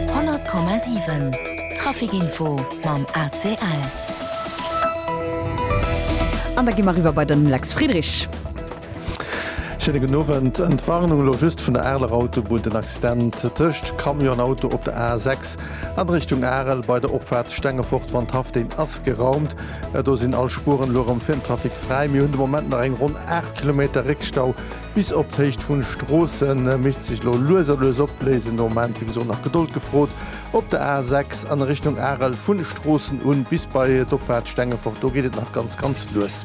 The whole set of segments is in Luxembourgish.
100,7 Trafic Info mam ACL. An da gi mer eriwwer bei den Lex Friedrich. Schéine gudden Owend. Entwarnung elo just vun der Areler Autobunn, den Accident tëscht Camion an Auto op der A6 an Richtung Arel bei der Opfaart Stengefort, Wandhaff, deen ass geraumt. Do sinn all Spueren elo erëm fir den Trafic fräi. Mir hunn de Moment nach eng ronn 8 Kilometer Réckstau Bis op d'Héicht vun Stroossen misst sech lo lues a lues opléisen. No Moment wéi gesot nach Gedold gefrot. Op der A 6 an Richtung Arel vun Stroossen un bis bei d'Opfahrt Stengefort do geet et nach ganz ganz lues.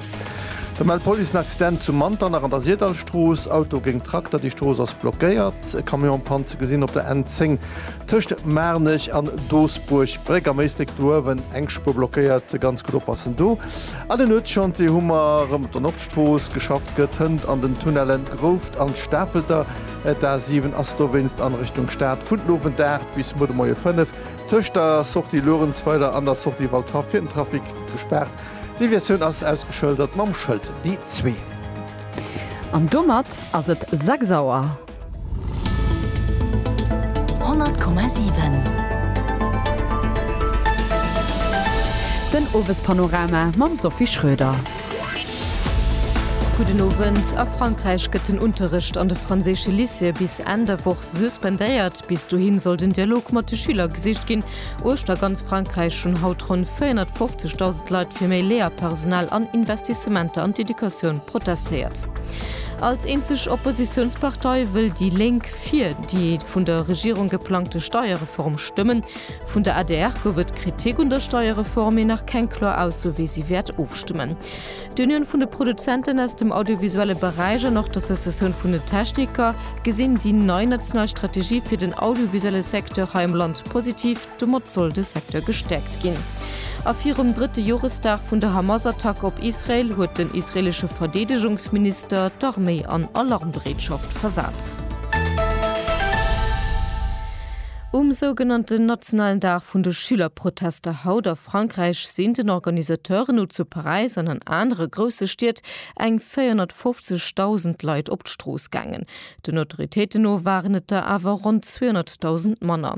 Da mellt d'Police en Accident zu Manternach an der Sirdallstrooss. Auto géint Trakter, déi Strooss ass blockéiert. E Camion am Panne ze gesinn op der N 10 tëscht Maarnech an Doosbuerg Bréck. Am Éislek do uewen eng Spuer blockéiert. Ganz gutt oppassen do. An den Nuetschantier hu mer rem. D'Foos geschafft gëtt, hënt an den Tunnellen d'Grouft an d'Stafelter. D'A7 ass dowéinst an Richtung Stad vun den Owend 8 bis muer de Moie 5 tëscht der Sortie Luerenzweiler an der Sortie Waldhaff fir den Trafic gespaart. D'Deviatioun ass ausgeschëldert mam Schëld D2. An domat ass et 6 Auer. Den Owespanorama mam Sophie Schröder. Gudden Owend. A Frankräich gëtt den Unterrecht an de franséische Lycéeë bis Enn der Woch suspendéiert. Bis dohin soll den Dialog mat de Schüler gesicht ginn. Uechter ganz Frankräich hunn haut ronn 450.000 Leit fir méi Léierpersonal an Investissementer an d'Educatioun protestéiert. Als eenzeg Oppositiounspartei wëll déi Lénk fir déi vun der Regierung geplangte Steierreform stëmmen. Vun der adr gouf et Kritik un der Steierreform, mee nach keng kloer Ausso wéi si wäert ofstëmmen. D'Unioun vun de Produzenten aus dem audiovisuelle Beräich an och d'Associatioun vun den Techniker gesinn déi nei national Strategie fir den audiovisuelle Secteur hei am Land positiv. Domat soll de Secteur gestäerkt ginn. A virum drëtte Joresdag vun der Hamas-Attack op Israel huet den israelesche Verdeedegungsminister d'Arméi an Alarmbereetschaft versat. Um sougenannten nationalen Dag vun de Schülerprotester haut a. Frankräich sinn den Organisateuren no zu Paräis an an anere grousse Stied eng 450.000 Leit op d'Strooss gaangen. Den Autoritéiten no waren et der awer ronn 200.000 manner.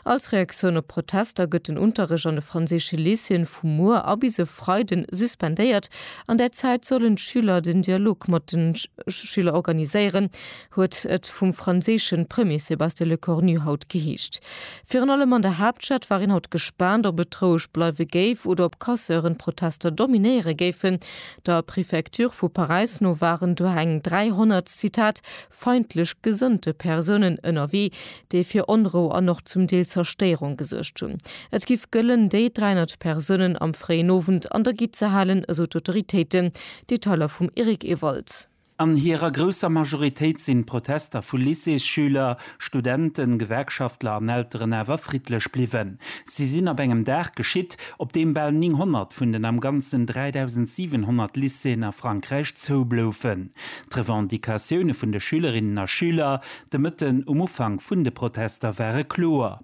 Als Reaktioun op d'Protester gëtt den Unterrecht an de franséische Lycéeën vu muer a bis e Freiden suspendéiert. An där Zäit sollen d'Schüler den Dialog mat de Schüler organiséieren. huet et vum franséische Premier Sébastien Lecornu haut geheescht. Virun allem an der Haaptstad war een haut gespaant, ob et roueg bleiwe géif oder ob Casseuren d'Protester dominéiere géifen. Der Prefecture vu Paräis no waren du eng 300, Zitat, feindlech gesënnte Persounen ënnerwee, déi fir Onrou an och zum Deel Zerstéierung gesuergt hunn. Et giff gëllen, déi 300 Persounen am fréien Owend an der Gitt ze halen, esou d'Autoritéiten. Detailer vum Eric Ewald. An hirer grousser Majoritéit sinn d'Protester vu Lycéesschüler, Studenten, Gewerkschaftler an Elteren awer friddlech bliwwen. Si sinn ab engem Dag geschitt, op deem bal 900 vun den am Ganzen 3.700 Lycéeën a Frankräich zoubloufen. D'Revendicatioune vun de Schülerinnen a Schüler de Mëtten um Ufank vun de Protester ware kloer.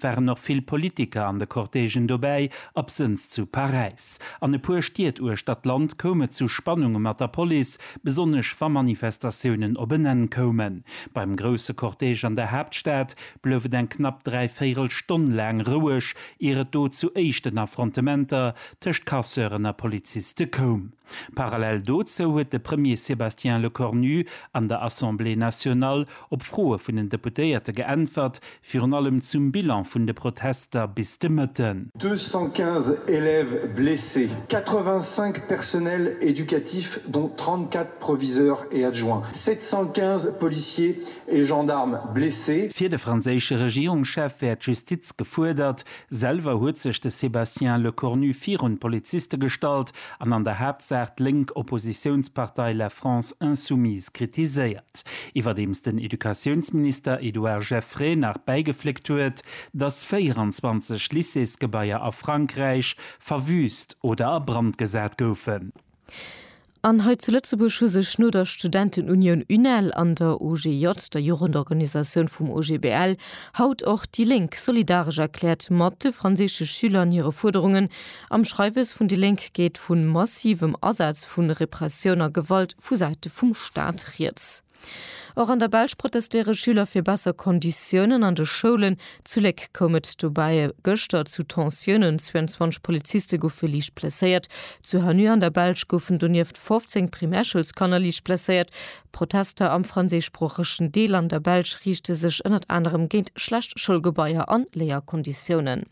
waren och vill Politiker an de Cortègen dobäi, absënns zu Paräis. An e puer Stied uechter d'Land koum et zu Spannunge mat der Police, besonnesch wa Manifestatiounen op en Enn koumen. Beim grousse Cortège an der Haaptstad blouf et eng knapp dräi Véirel Stonn laang roueg, ier et do zu éischten Affrontementer tëscht Casseuren a Poliziste koum. Parallel dozou huet de Premier Sébastien Lecornu an der Assemblée nationale op Froe vun den Deputéierte geäntwert, Virun allem zum Bilan vun de Protester bis de Mëtten. 215 élèves blessés, 85 personnels éducatifs dont 34 proviseurs et adjoints, 715 policiers et gendarmes blessés. Fir de franséische Regierungschef wär d'Justiz gefuerdert. Selwer huet sech de Sébastien Lecornu virun d'Poliziste gestallt an an der Haaptsaach d'lénk Oppositiounspartei La France Insoumise kritiséiert. Iwwerdeems den Educatiounsminister Edouard Geffray nach bäigefléckt huet, datt 24 Lycéesgebaier a Frankräich verwüüst oder a Brand gesat goufen. An hei zu Lëtzebuerg hu sech no der Studentenunioun UNEL an der OGJ, der Jugendorganisatioun vum OGBL, haut och déi Lénk solidaresch erkläert mat de franséische Schüler an hire Fuerderungen, Am Schreiwes vun déi Lénk geet vu massivem Asaz vu Repressioun a Gewalt vu Säite vum Staat rieds. Och an der Belsch protestéiere Schüler fir besser Konditiounen an de Schoulen. Zu Léck koum et dobäi gëschter zu Tensiounen, 22 Poliziste goufe liicht blesséiert. Zu Hanneux an der Belsch goufen donieft 15 Primärschoulskanner liicht blesséiert. D'Protester am franséischsproochegen Deel an der Belsch riichte sech ënnert anerem géint schlecht Schoulgebaier an Léierkonditiounen.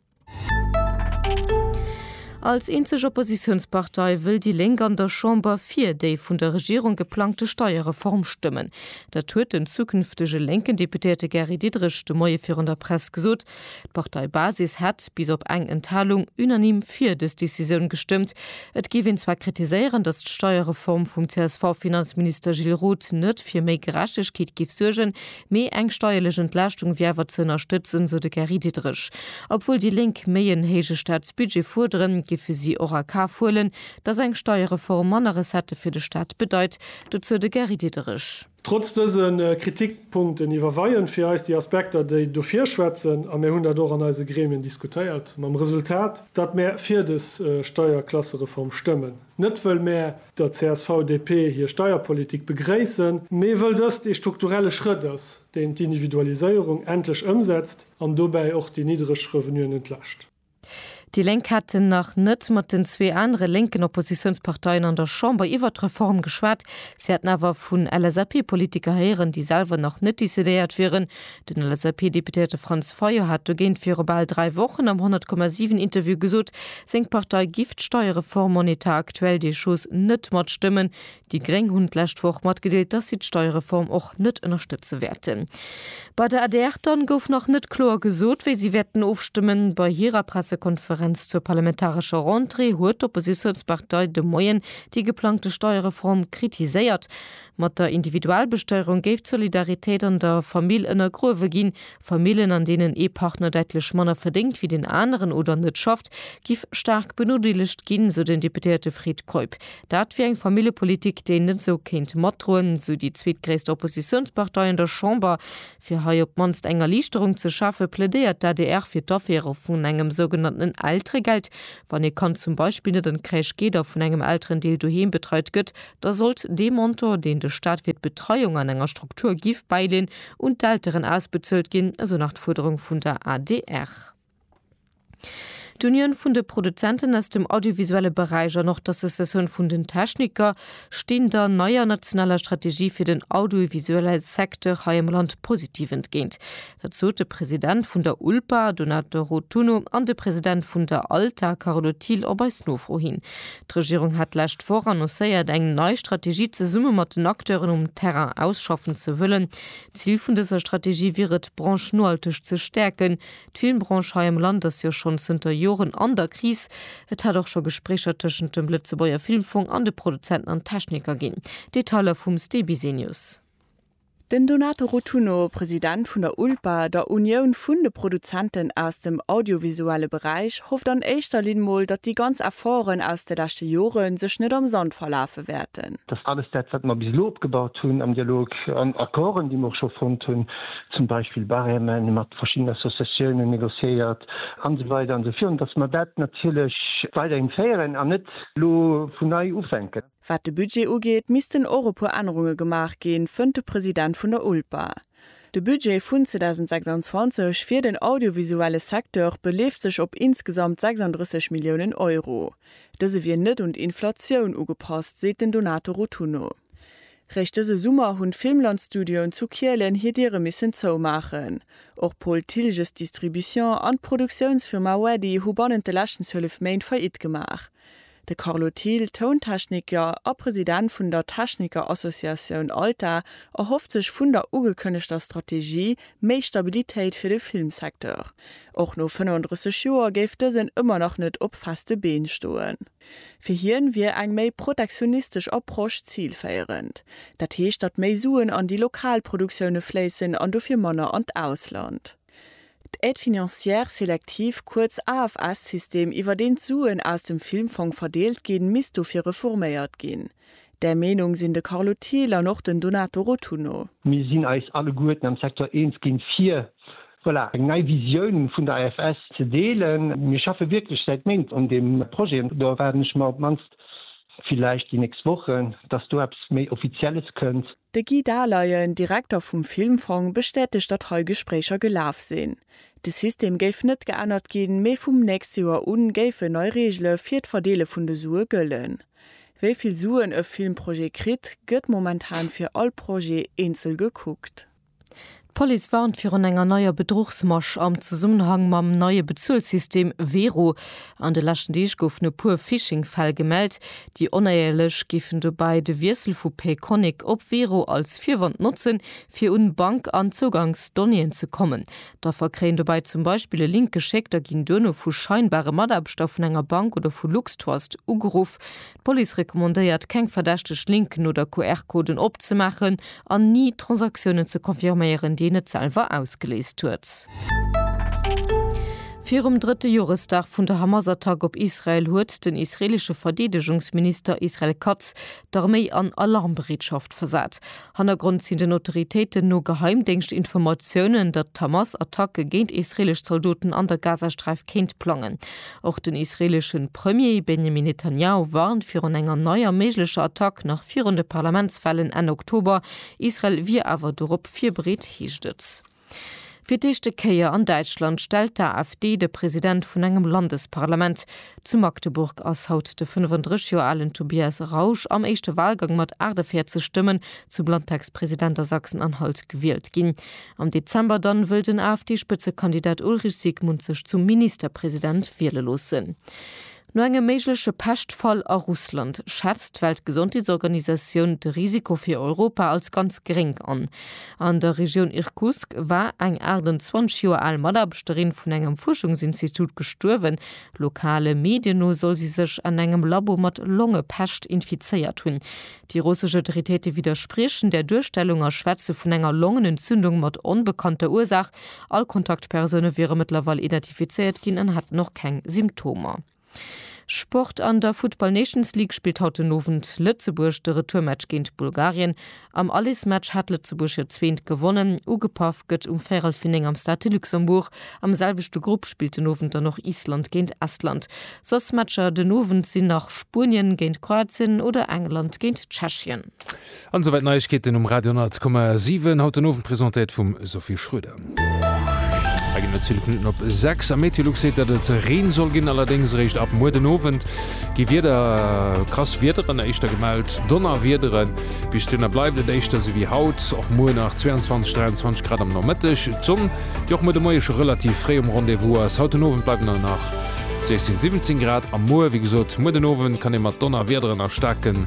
Als eenzeg Oppositiounspartei wëll déi Lénk an der Chamber fir déi vun der Regierung geplangte Steierreform stëmmen. Dat huet den zukünftege lénken Deputéierte Gary Diderich de Moie virun der Press gesot. D'Parteibasis hätt, bis op eng Enthalung, unanime fir dës Decisioun gestëmmt. Et géif een zwar kritiséieren, datt d'Steierreform vum CSV-Finanzminister Gilles Roth net fir méi Gerechtegkeet géif suergen, Mee eng steierlech Entlaaschtung wier awer ze ënnerstëtzen, sou de Gary Diderich. Obwuel déi Lénk méi en héije Staatsbudget fuerderen, géife si och a Kaf huelen, datt eng Steierreform manner Recettë fir de Staat bedeit. Dozou de Gary Diderich. Trotz dëse Kritikpunkten iwwerweien fir eis déi Aspekter, déi dofir schwätzen, a mir hunn dat och an eise Gremien diskutéiert, mam Resultat, datt mir fir des Steierklassereform stëmmen. Net wëll mär der CSV-DP hir Steierpolitik begréissen, mee wëll dëst ee strukturelle Schrëtt ass, deen d'Individualiséierung endlech ëmsetzt an dobäi och déi niddreg Revenuen entlascht. Déi Lénk hätten nach net mat den zwee anere lénken Oppositiounsparteien an der Chamber iwwert d'Reform geschwat. Si hätten awer vun LSAP-Politiker héieren, déi selwer nach net decidéiert wieren, Den LSAP-Deputéierte Franz Fayot hat dogéint viru bal dräi Wochen am 100,7 Interview gesot, seng Partei giff d'Steiereform en état actuel des choses net matstëmmen. Déi Gréng hunn d'lescht Woch matgedeelt, dass si d'Steiereform och net ënnerstëtze wäerten. Bei der adr dann gouf nach net kloer gesot, wéi si wäerten ofstëmmen. Bei hirer Pressekonferenz zur parlamentarescher Rentrée huet d'Oppositiounspartei de Moien déi geplangte Steiereform kritiséiert. Mat der Individualbesteierung géif d'Solidaritéit an der Famill ënnergruewe ginn. Famillen, an deenen ee Partner däitlech manner verdéngt wéi den aneren oder net schafft, giff staark benodeelegt ginn, sou den Deputéierte Fred Keup. Dat wier eng Familljepolitik, déi een net esou kéint matdroen, sou déi zweetgréisst Oppositiounspartei an der Chamber. Fir hei op d'mannst eng Erliichterung ze schafe plädéiert d'ADR fir d'Aféiere vun engem sougenannten Elteregeld. Wann ee Kand zum Beispill net an d'Crèche geet a vun engem Elterendeel doheem betreit gëtt, da sollt dee Montant, deen de Staat fir d'Betreiung an enger Struktur giff bäileen, un d'Elteren ausbezuelt ginn, esou nach d'Fuerderung vun der adr. D'Unioun vun de Produzenten aus dem audiovisuelle Beräich an och d'Associatioun vun den Techniker stinn der neier nationaler Strategie fir den audiovisuelle Secteur hei am Land positiv entgéint. Dat sot de President vun der ULPA, Donato Rotunno, an de President vun der ALTA, Carlo Thiel, op eis Nofro hin. D'Regierung hat d'lescht Woch annoncéiert, eng nei Strategie zesumme mat den Acteuren um Terrain ausschaffen ze wëllen. D'Zil vun dëser Strategie wier et, d'Branche nohalteg ze stäerken. D'Filmbranche hei am Land ass jo schonn zënter Joren an der Kris. Et hat och scho Gespréicher tëschent dem Lëtzebuerger Filmfong an de Produzenten an Techniker ginn. Detailer vum Ste Bisenius. Den Donato Rotunno, President vun der ULPA, der Unioun vun de Produzenten aus dem audiovisuelle Beräich, hofft an éischter Linn mol, datt déi ganz Efforten aus de leschte Jore sech net am Sand verlafe wäerten. Datt alles dat, wat mer bis elo opgebaut hunn am Dialog, an Accorden, déi mer och scho fonnt hunn, zum Beispill Barème mat verschiddenen Associatiounen négociéiert an esou weider an esou virun, dass mer dat natierlech weiderhin féieren an net elo vun nei ufänken. Wat de Budget ugeet, missten och e puer Ännerunge gemaach ginn, fënnt de President vun der ULPA. De Budget vun 2026 fir den audiovisuelle Secteur beleeft sech op insgesamt 36 Milliounen Euro. Dëse wier net un d'Inflatioun ugepasst, seet den Donato Rotunno. Réischt dëse Summer hunn d'Filmland-Studioen zu Kielen hir Diere missen zoumaachen. Och Paul Thilges Distribution an d'Produktiounsfirma Weddy hu bannent de leschten 12 Méint Faillite gemaach. De Carlo Thill, Tountechniker a President vun der Techniker-Associatioun ALTA, erhofft sech vun der ugekënnegter Strategie méi Stabilitéit fir de Filmsecteur. Och no 35 Joer géif dësen ëmmer nach net op feste Been stoen. Fir hien wier eng méi protektionistesch Approche zilféierend. Dat heescht, datt méi Suen an déi lokal Produktioune fléissen an dofir manner an d'Ausland. D'Aide financière sélective, kuerz AFS-System, iwwer deen d'Suen aus dem Filmfong verdeelt ginn, misst dofir reforméiert ginn. Där Meenung sinn de Carlo Thiel an och den Donato Rotunno. Mir sinn eis alleguerten am Secteur eens ginn, fir, voilà, eng nei Visioun vun der AFS ze deelen. Mir schaffe wierklech säit Méint un deem Projet an do erwaarden ech mer op d'mannst, villäicht déi nächst Wochen, dass do eppes méi Offizielles kënnt. De Guy Dahleyen, Direkter vum Filmfong, bestätegt, datt hei Gespréicher gelaf sinn. De System géif net geännert ginn, mee vum nächste Joer u géifen nei Reegele fir d'Verdeele vun de Sue gëllen. Wéi vill Suen e Filmprojet kritt, gëtt momentan fir all Projet eenzel gekuckt. D'Police warnt virun enger neier Bedruchsmasch am Zesummenhang mam neie Bezuelsystem Wero. An de leschten Deeg goufen e puer Phishing-Fäll gemellt. Déi Onéierlech géifen dobäi de Wiessel vu Payconiq op Wero als Virwand notzen, fir un Bank an Zougangsdonnéeën ze kommen. D'Affer kréien dobäi zum Beispill e Link geschéckt a ginn duerno vu scheinbare Mataarbechter vun enger Bank oder vu LuxTrust ugeruff. D'Police recommandéiert, keng verdächteg Linken oder QR-Coden opzemaachen an ni Transaktiounen ze confirméieren, déi een net selwer ausgeléist huet. Virum drëtte Joresdag vun der Hamas-Attack op Israel huet den israeelesche Verdeedegungsminister Israel Katz d'Arméi an Alarmbereetschaft versat. Hannergrond sinn den Autoritéiten no Geheimdéngschtinformatiounen, datt d'Hamas Attacke géint israeelesch Zaldoten an der Gazasträif kéint plangen. Och den israeelesche Premier Benjamin Netanjahu warnt virun enger neier méiglecher Attack nach virun de Parlamentswahlen Enn Oktober. Israel wier awer dorop virbereet, heescht et. Fir d'éischte Kéier an Däitschland stellt d'AfD de President vun engem Landesparlament. Zu Magdeburg ass haut de 35 Joer alen Tobias Rausch am éischte Walgang mat 48 Stëmmen zum Landtagspresident a Sachsen-Anhalt gewielt ginn. Am Dezember dann wëll den AfD-Spëtzekandidat Ulrich Siegmund sech zum Ministerpresident wiele loossen. No engem méigleche Peschtfall a Russland schätzt d'Weltgesondheetsorganisatioun de Risiko fir Europa als ganz geréng an. An der Regioun Irkutsk war eng 28 Joer al Mataarbechterin vun engem Fuerschungsinstitut gestuerwen. Lokale Medien no soll si sech an engem Labo mat Longepescht infizéiert hunn. Déi russesch Autoritéite widderspriechen där Duerstellung a schwätze vun enger Longenentzündung mat onbekannter Ursaach. All Kontaktpersoune wiere mëttlerweil identifizéiert ginn an hätten och keng Symptomer. Sport An der Futtball Nations League spillt haut den Owend Lëtzebuerg de Retourmatch géint Bulgarien. Am Allesmatch hat Lëtzebuerg hiert zweent gewonnen. Ugepaff gëtt um véierel fir 9 am Stade de Luxembourg. Am selwechte Grupp spillt den Owend dann och Island géint Estland. Soss Matcher den Owend sinn nach Spuenien géint Kroatien oder England géint Tschechien. An esou wäit Neiegkeeten um Radio 10,7, haut den Owend presentéiert vum Sophie Schröder. Hei ginn et 12 Minutten op 6 a Meteolux seet, datt et Reen soll ginn, allerdéngs eréischt ab muer den Owend gi wieder krass Wiederen éischter gemellt, Donnerwiederen. Bis duerno bleift et éischter esou wéi haut, och muer nach 22, 23 Grad am Nomëtteg. D'Sonn, déi och muer de Moie scho relativ fréi um Rendez-vous ass, haut den Owend bleiwen der nach 16, 17 Grad a muer, wéi gesot, muer den Owend kann ee mat Donnerwiederen a staarken.